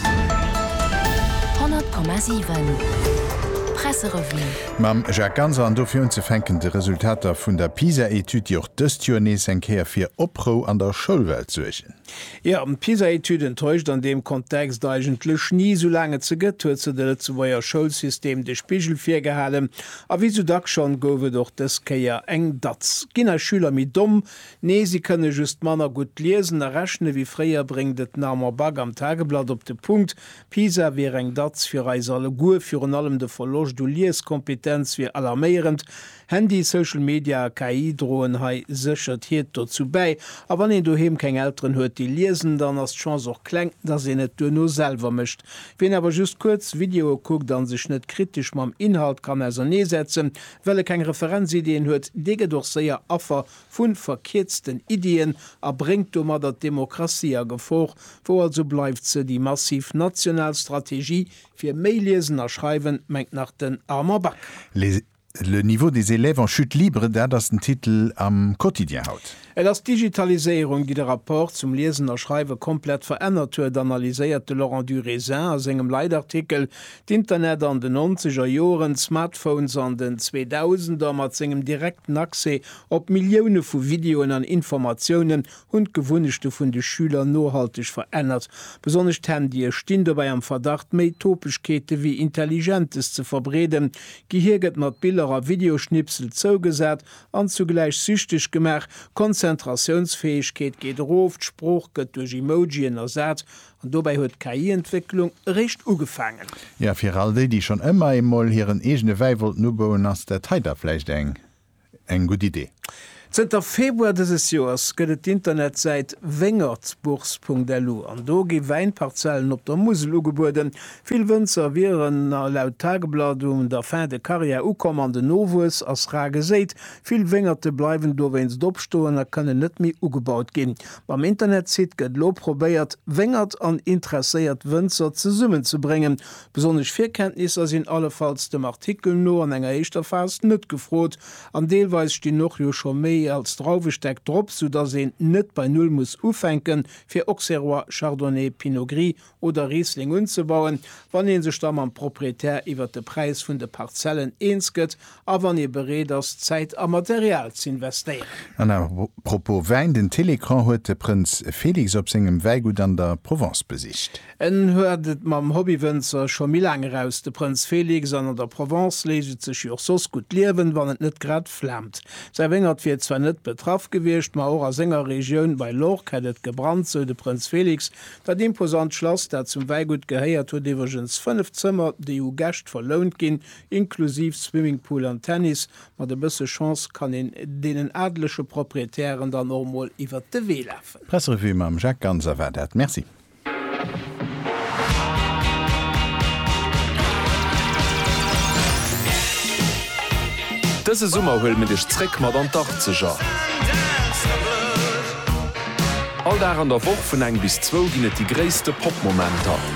100,7 Presserevue. Mam Jacques Ganser an dofir unzefänken de Resultater vun der PISA-Etüd, déi och dëst Joer nees eng Kéier fir Oprou an der Schoulwelt suergen. Jo, d'PISA-Etüd enttäuscht an deem Kontext eigentlech ni. Soulaang et se gëtt, huet se de Lëtzebuerger Schoulsystem de Spigel virgehalen. A wéi sou dacks schonn, gouf et och dës Kéier eng Datz. Ginn eis Schüler méi domm, Nee, si kënne just manner gutt liesen a rechne wéi fréier, bréngt et den Armand Back am Tageblatt op de Punkt. Pisa wier eng Datz fir eis alleguer. Virun allem de Verloscht u Lieskompetenz wier alarméierend. Handy, Social Media a KI droen hei sécher d'Hiert dozou bäi. A wann een doheem keng Elteren huet, déi liesen, dann ass d'Chance och kleng, dass een et duerno selwer mécht. Wien awer just kuerz Videoe kuckt an sech net kritesch mam Inhalt kann ausernee setzen, well e keng Referenzideeën huet, dee gëtt och séier Affer vu verkierzten Iddien a bréngt domadder d'Demokratie a Gefor. Wou also bleift se, déi massiv national Strategie fir méi Liesen a Schreiwen, mengt nach den Armand Bakker. Les, Le niveau des élèves en chute libre, dat ass den Titel am Quotidien haut. Et ass d'Digitaliséierung, déi de Rapport zum Liesen a Schreiwe komplett verännert huet, analyséiert de Laurent du Raisin a sengem Leitartikel. D'Internet an den nonzeger Joren, d'Smartphones an den Zweedausender mat sengem direkten Accès Op Millioune vu Videoen an Informatiounen hunn d'Gewunnechte vun de Schüler nohalteg verännert. Besonnesch d'Handye stinn dobäi am Verdacht, méi Topegkeete wéi Intelligentes ze verbreeden. D'Gehier gëtt mat Biller a Videoschnipsel zougesat an zugläich süchteg gemaach. D'Konzentratiounsfäegkeet geet erof, d'Sprooch gëtt duerch Emojien ersat, an dobäi huet d'KI-Entwécklung eréischt ugefaangen. Jo, fir all déi, déi schonn ëmmer eemol hiren eegene Wäi wollten ubauen, ass dat hei da vläicht eng eng gutt Idee. Zënter Februar dëses Joers gëtt et d'Internetsäit wengerdsbourse.lu an do gi Wäinparzellen op der Musel ugebueden. Vill Wënzer wieren laut Tageblatt un der Fin de carrière ukomm an den Nowuess ass rar geséit. Vill Wéngerte bleiwen dowéinst opstoen a kënnen net méi ugebaut ginn. Mam Internetsite gëtt elo probéiert, Wéngert an interesséiert Wënzer zesummenzebréngen. Besonnesch Virkenntnisser sinn allefalls dem Artikel no an enger éischter Phas net gefrot an deelweis stinn och jo scho méi als Drauwestäck drop, sou dass een net bei Null muss ufänken fir Auxerrois, Chardonnay, Pinot Gris oder Riesling unzebauen, wann ee sech da mam Proprietär iwwert de Präis vun de Parzellen eens gëtt A wann ee bereet ass, Zäit a Material z'investéieren. An à propos Wäin, den Télécran huet de Prënz Félix op sengem Wäigutt an der Provence besicht. En huet et mam Hobbywënzer scho méi laang eraus, de Prënz Félix, an an der Provence léicht et sech jo och soss gutt liewen, wann et net grad flaamt. Säi Wéngert wier zwar net betraff gewiescht, ma och a senger Regioun bei l'Orque hätt et gebrannt, sou de Prënz Félix. Dat imposant Schlass, dat zum Wäigutt gehéiert, huet iwwregens fënnef Zëmmer, déi u Gäscht verlount ginn, Inklusiv Swimmingpool an Tennis. Mat e bësse Chance kann een deenen adelege Proprietären dann och mol iwwert de Wee lafen. Presserevue mam Jacques Ganser war dat. Merci. Dëse Summer huele mir dech zréck mat an d'Achtzeger. All Dag an der Woch vun eng bis zwou ginn et déi gréisste Pop-Momenter.